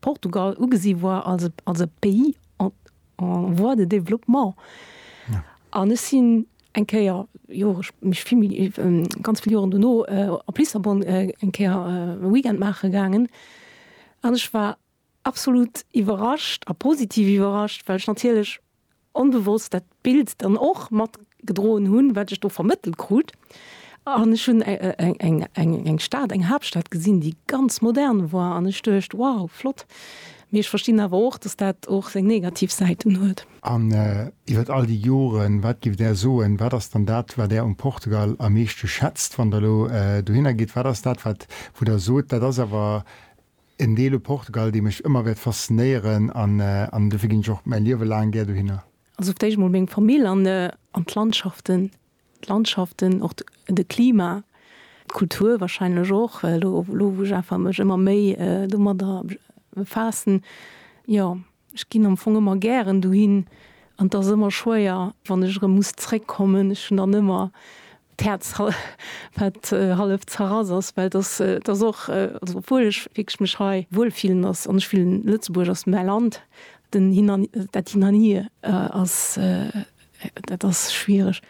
Portugal ugesi war als als e Pays en en voie de développement. An ech sinn eng Kéier, jo ech mech vill méi ganz vill Joren dono, op Lissabon eng Kéier e Weekend maache gaangen. An ech war absolut iwwerrascht a positiv iwwerrascht, well ech natierlech onbewosst dat Bild dann och matgedroen hunn, wat ech do vermëttelt krut. An ech hunn eng Stad, eng Haaptstad gesinn, déi ganz modern war an ech duecht, wow, flott. Mee ech verstinn awer och, dass dat och seng negativ Säiten huet. An iwwer all déi Joren, wat géift Där soen, wat ass dann dat, wat Där um Portugal am meeschte schätzt, wann Der elo dohinner gitt? Wat ass dat, wat wou Der sot, dat ass awer En Deel u Portugal, dee mech ëmmer wäert faszinéieren an dofir ginn ech och mäi Liewe laang gär dohinner. Also fir d'éischt emol meng Famill an d'Landschaften, d'Landschaften, och de Klima, d'Kultur wahrscheinlech och, elo wou ech einfach mech ëmmer méi domadder befaassen, jo. Ech ginn am Fong ëmmer gären dohin an et ass ëmmer schwéier, wann ech erëm muss zréckkommen. Ech hunn dann ëmmer d'Häerz, wat hallef zerrass ass, well et ass, et ass och, also obwuel ech wierklech mech hei wuel fillen ass an ech fillen, Lëtzebuerg ass mäi Land, den Hin an, dat Hin an Hier ass, dat ass schwiereg.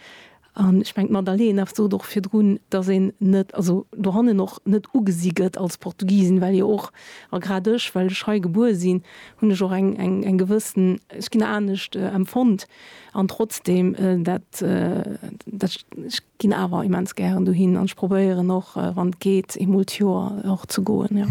An ech mengen, d'Madalena sot och virdrun, dass een net, also dohannen och net ugesi gëtt als Portugisin, well jo och, a grad ech, well ech hei gebuer sinn, hunn ech och eng gewëssen, ech ginn anescht empfonnt. An trotzdem, dat, ech ginn awer immens gären dohin an ech probéieren och, wann et geet, eemol d'Joer och ze goen, jo.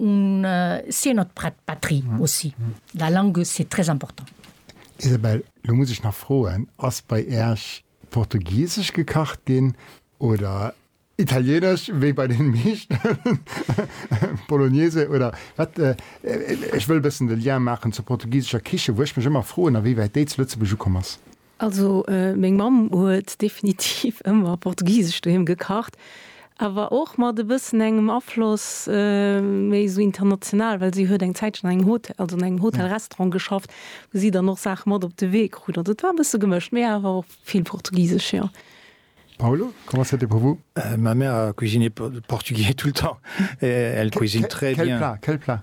On sait notre patrie aussi. La langue c'est très important. Isabelle, lo muss ech nach froen, ass bei Äerch portugiesesch gekacht ginn oder italienesch wéi bei den meeschten Bolognese oder wat? Ech wëll e bëssen de Lien maachen zur portugiesescher Kichen, wou ech mech ëmmer froen, a wéi wäit déi zu Lëtzebuerg ukomm ass. Also meng Mamm huet definitiv ëmmer portugisesch doheem gekacht, awer och mat e bëssen engem Afloss méi esou international, well si huet eng Zäitchen an engem Hot, also an engem Hotel-Restaurant geschafft, wou si dann och Saache mat op de Wee krut. Also et war e bësse gemëscht, mee awer och vill portugisesch, jo. Paulo, comment c'était pour vous? Ma mère a cuisiné portugais tout le temps, elle cuisine très bien. Quel plat? Quel plat?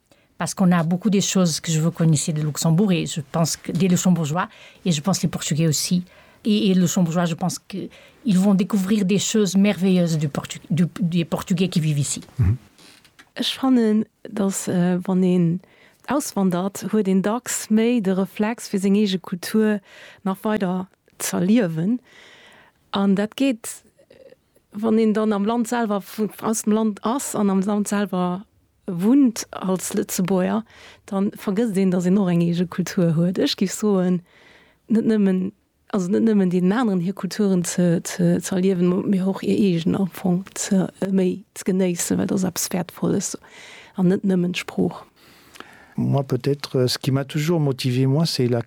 Parce qu'on a beaucoup des choses que je veux connaissiez de Luxembourg et je pense que des Luxembourgeois et je pense les Portugais aussi et et Luxembourgeois je pense que ils vont découvrir des choses merveilleuses du Portu du des Portugais qui vivent ici. Ech fannen, datt wann een auswandert, huet een dacks méi de Reflex fir seng eege Kultur nach weider z'erliewen an dat geet Wann een dann am Land selwer, aus dem Land ass an am Land selwer wunnt als Lëtzebuerger, da vergësst een, datt een och eng eege Kultur huet. Ech géif soen, net nëmmen, also net nëmmen deenen aneren hir Kulturen ze, ze, ze erliewen, mee och hir eegen am Fong ze, méi ze genéissen, well dat ass eppes Wäertvolles an net nëmmen d'Sprooch. Moi peut-être, ce qui m'a toujours motivé, moi, c'est la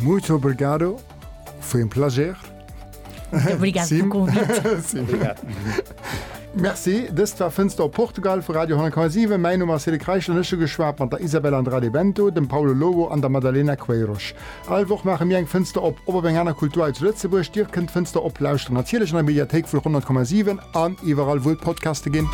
Muito obrigado, foi um plager. Obrigado pelo Sim. convite. Merci, dëst war Fënster op Portugal vu Radio 10,7. Mäin Numm ass Cédric Reichel an ech hu geschwat mat der Isabel Andrade Bento, dem Paulo Lobo an der Madalena Queiroz. All Woch maache mir eng Fënster op, ob op eng aner Kultur hei zu Lëtzebuerg. Dir kënnt d'Fënster op lauschteren natierlech an der Mediathéik vu 100,7 an iwwerall wou et Podcaste ginn.